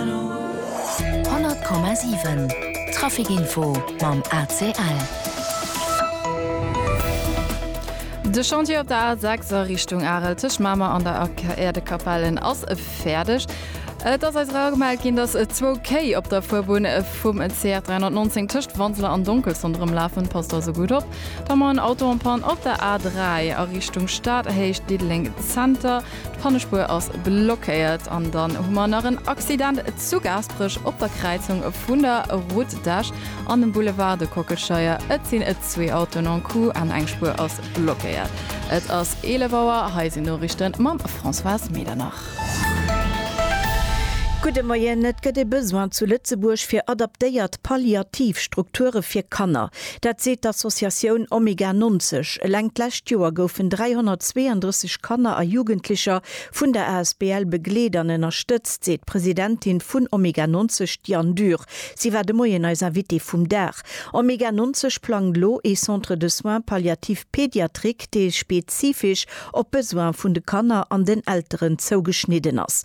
100,7 Trafic Info mam ACL. De Chantier op der A6 a Richtung Arel tëscht Mamer an der Aerdekapellen ass fäerdeg. Et ass eis era gemellt ginn, datt zwou Kéi op der Fuerbunn vum CR 319 tëscht Wanseler an Donkelson erëmlafen. Passt also gutt op. Dann nach en Auto en panne op der A3 a Richtung Stad, Héicht Diddeleng Zenter. D'Pannespuer ass blockéiert an dann hu mer nach en Accident zu Gaasperech op der Kräizung vun der Route d'Esch an dem Boulevard de Kockelscheier. Et sinn zwee Autoen en coup an eng Spuer ass blockéiert. Et ass 11 Auer, hei sinn d'Noriichten mam Françoise Medernach. Gudde Moien. Et gëtt e Besoin zu Lëtzebuerg fir adaptéiert palliativ Strukture fir Kanner. Dat seet d'Associatioun Omega 90. Eleng d'lescht Joer goufen 332 Kanner a Jugendlecher vun der asbl begleet an ënnerstëtzt, seet d'Presidentin vun Omega 90, d'Diane Dürr. Si war de Moien eis Invitée vum Dag. Omega 90 plangt elo ee Centre de soins palliatifs pédiatriques, dee spezifesch op d'Besoine vun de Kanner an den Elteren zougeschnidden ass.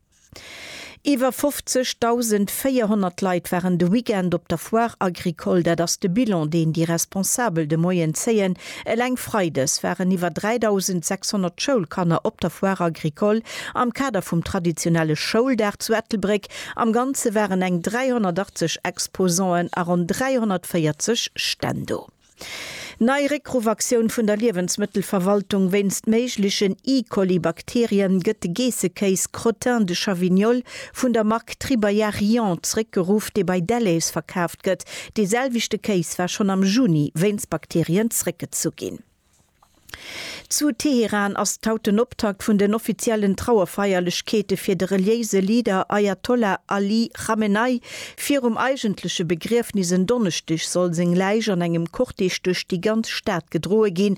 Iwwer 50.400 Leit waren de Weekend op der Foire Agricole, dat ass de Bilan, deen déi Responsabel de Moien zéien. Eleng Freides waren iwwer 3.600 Schoulkanner op der Foire Agricole am Kader vum traditionelle Schouldag zu Ettelbréck. Am Ganze waren eng 380 Exposanten a ronn 340 Stänn do. Nei Réckruffaktioun vun der Liewensmëttelverwaltung wéinst méiglechen E-Coli-Bakterien, Gëtt de Geessekéis Crottin de Chavignol vun der Mark Tribayarion zréckgeruff, dee bei Delhaize verkaaft gëtt? Dee selwechte Kéis war schonn am Juni wéinst Bakterien zréckgezu ginn. Zu Teheran ass d'haut den Optakt vun den offiziellen Trauerfeierlechkeete fir de reliéise Leader Ajatollah Ali Chamenei. Virum eigentleche Begriefnis en Donneschdeg soll seng Läich an engem Cortège duerch déi ganz Stad gedroe ginn.